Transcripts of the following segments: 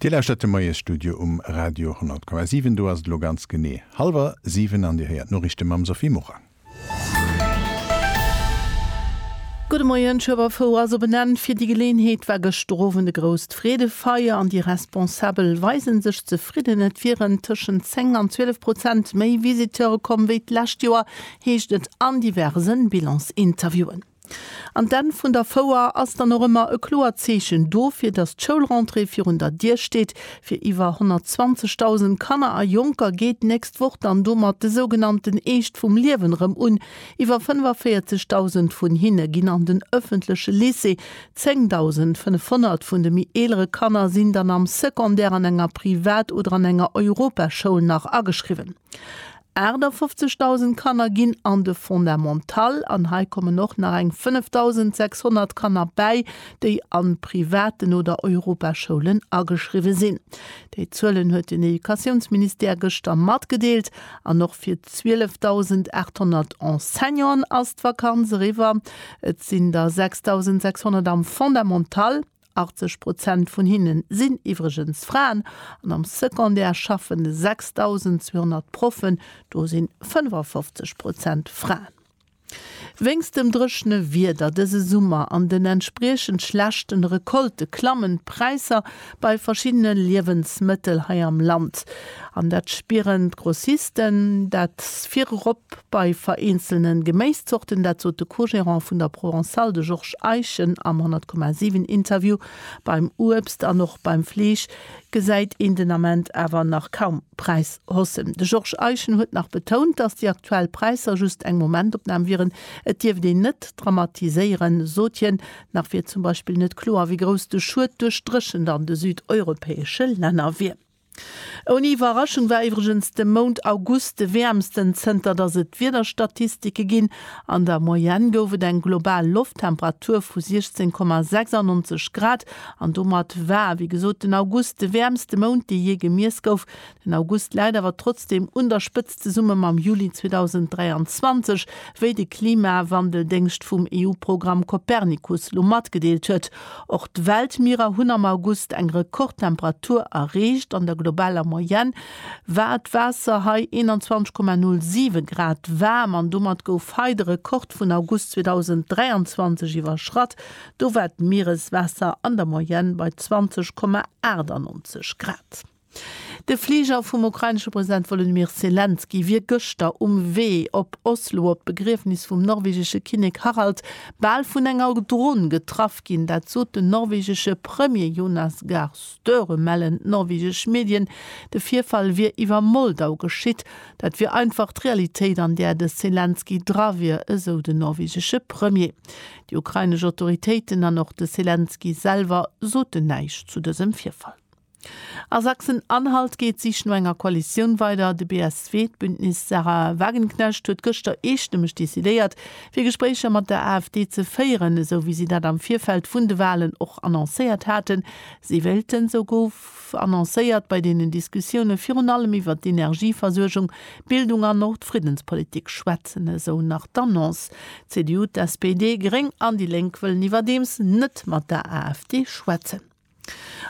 Dir lauschtert de Moiesstudio um Radio 10,7. Do ass et elo ganz genee hallwer siwen an Dir héiert d'Noriichte mam Sophie Morang. Gudde Moien, Schueberfouer ass op en Enn. Fir déi Geleeënheet war gëschter Owend e grousst Freedefeier an déi Responsabel weisen sech zefridden. Et wieren tëschent 10 an 12 Prozent méi Visiteure komm wéi d'lescht Joer, heescht et an diversen Bilansinterviewen. An d'Enn vun der Fouer ass dann och ëmmer e kloert Zeechen dofir, datt d'Schoulrentrée virun der Dier steet. Fir iwwer 120.000 Kanner a Jonker geet d'nächst Woch dann domat de sougenannten Eescht vum Liewen erëm un. Iwwer 45.000 vun hinne ginn an den ëffentleche Lycée, 10.500 vun de méi eelere Kanner sinn dann am Secondaire an enger Privat oder an enger Europaschoul nach ageschriwwen. 58.000 Kanner ginn an de Fondamental an hei kommen och nach eng 5.600 Kanner bäi, déi a privaten oder Europaschoulen ageschriwwe sinn. Déi Zuelen huet den Educatiounsministère gëschter matgedeelt. An och fir 12.800 Enseignanten ass d'Vakanz eriwwer. Et sinn der 6.600 am Fondamental 80 Prozent vun hinne sinn iwwregens Fraen an am Secondaire schaffen 6.200 Proffen, do si 55 Prozent Fraen. Wéinst dem dréchene Wieder dëse Summer an den entspriechend schlechte Recolte klammen d'Präisser bei verschiddene Liewensmëttel hei am Land. An dat spieren d'Grossisten, dat virop bei vereenzelne Geméiszorten. Dat sot de Co-Gérant vun der Provençale, de Georges Eischen am 100,7 Interview. Beim Uebst an och beim Fleesch gesäit een den Ament awer nach kaum Präishaussen. De Georges Eischen huet nach betount, datt déi aktuell Präisser just eng Momentopnam wieren. Et dierft een net dramatiséieren, sot hien. Nach wier zum Beispill net kloer, wéi grouss de Schued duerch d'Dréchent an de südeuropäesche Länner wier. Ouni Iwwerraschung war iwwregens de Mount August de wäermsten zënter datt et Wiederstatistike ginn. An der Moyenne gouf et eng global Lofttemperatur vu 16,96 Grad an domat war, wéi gesot, den August de wäermste Mount, dee jee gemiess gouf. Den August läit awer trotzdeem un der Spëtzt. zesumme mam Juli 2023, wéi de Klimawandeldéngscht vum EU-Programm Copernicus lo matgedeelt huet. Och d'Weltmierer hunn am August eng Rekordtemperatur erreecht. An der globaler Moyenne war d'Waasser hei 21,07 Grad waarm an domat gouf hei de Rekord vun August 2023 iwwerschratt. Do war d'Miereswaasser an der Moyenne bei 20,98 Grad. De Fliger vum ukrainesche President Wolodymyr Selenskyj wier gëschter um Wee op Oslo op d'Begriefnis vum norwegesche Kinnek Harald bal vun enger Dron getraff ginn. Dat sot den norwegesche Premier Jonas Gahr Støre, mellen d'norwegesch Medien. De Virfall wier iwwer Moldau geschitt. Dat wier einfach d'Realitéit, an där de Selenskyj dra wier, esou den norwegesche Premier. Déi ukrainesch Autoritéiten an och de Selenskyj selwer soten näischt zu dësem Virfall. A Sachsen-Anhalt geet d'Sich no enger Koalitioun weider. De BSW, d'Bündnis Sarah Wagenknecht, huet gëschter eestëmmeg decidéiert, fir Gespréicher mat der AfD ze féieren, esou wéi si dat am Virfeld vun de Walen och annoncéiert haten. Si wéilten, esou gouf annoncéiert, bei deenen Diskussioune virun allem iwwert d'Energieversuergung, d'Bildung an och d'Friddenspolitik schwätzen, esou nach d'Annonce. D'CDU, d'SPD, Gréng an déi Lénk wëllen iwwerdeems net mat der AfD schwätzen.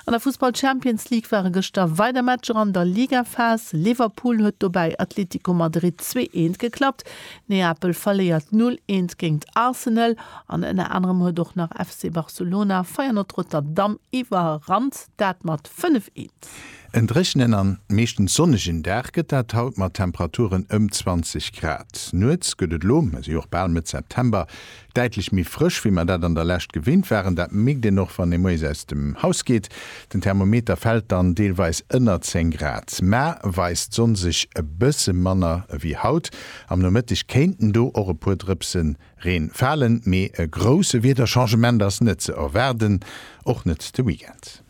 An der Fussball Champions League ware gëschter weider Matcher an der Ligaphas. Liverpool huet dobäi Atlético Madrid zwee eent geklappt, Neapel verléiert null eent géingt Arsenal an ënner anerem huet och nach FC Barcelona Feyenoord Rotterdam iwwerrannt, dat mat fënnef eent. En dréchenen an meeschtens sonnegen Dag gëtt dat haut mat Temperaturen ëm 20 Grad. Nuets gëtt et lo, mir si och bal Mëtt September, Däitlech méi frësch, wéi mer dat an der Lescht gewinnt waren. Dat mierkt een och, wann ee moies aus dem Haus geet. Den Thermometer fält dann deelweis ënner 10 Grad. Mä weist d'Sonn sech e bësse manner ewéi haut, am Nomëtteg kéinten do och e puer Drëpse Reen falen, mee e grousse Wiederchangement ass net ze erwaarden, och net de Weekend.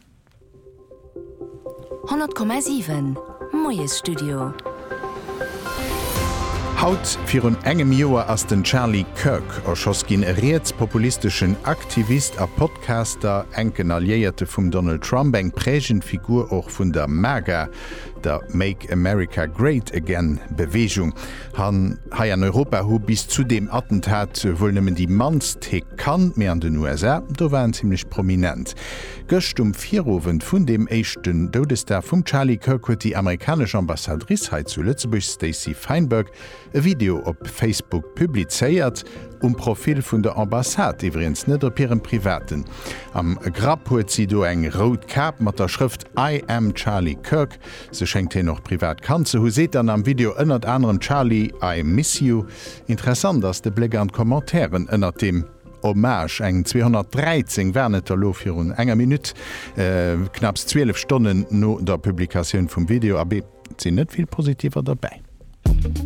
100,7 Moiesstudio. Haut virun engem Joer ass den Charlie Kirk erschoss ginn, e rietspopulisteschen Aktivist a Podcaster, enken Alliéierte vum Donald Trump, eng prägend Figur och vun der MAGA, der Make America Great Again Beweegung. Hei an Europa hu bis zu deem Attentat wuel nëmmen déi mannst hie kannt, mee an den USA, do war en zimmlech prominent. Gëscht um Virowend vun deem éischten Doudesdag vum Charlie Kirk huet déi amerikanesch Ambassadrice hei zu Lëtzebuerg Stacey Feinberg e Video op Facebook publizéiert, um Profil vun der Ambassade, iwwregens net op hirem privaten. Am Grapp huet si do eng rout Kap mat der Schrëft I am Charlie Kirk. Se schéngt hien och privat kannt ze hu, seet dann am Video ënnert anerem Charlie, I miss you. Interessant ass de Bléck an d'Commentairen ënnert deem. Hommage, eng 213 waren et der lo virun enger Minutt, knapps 12 Stonnen no der Publikatioun vum Video, abee, et sinn net vill Positiver dobäi.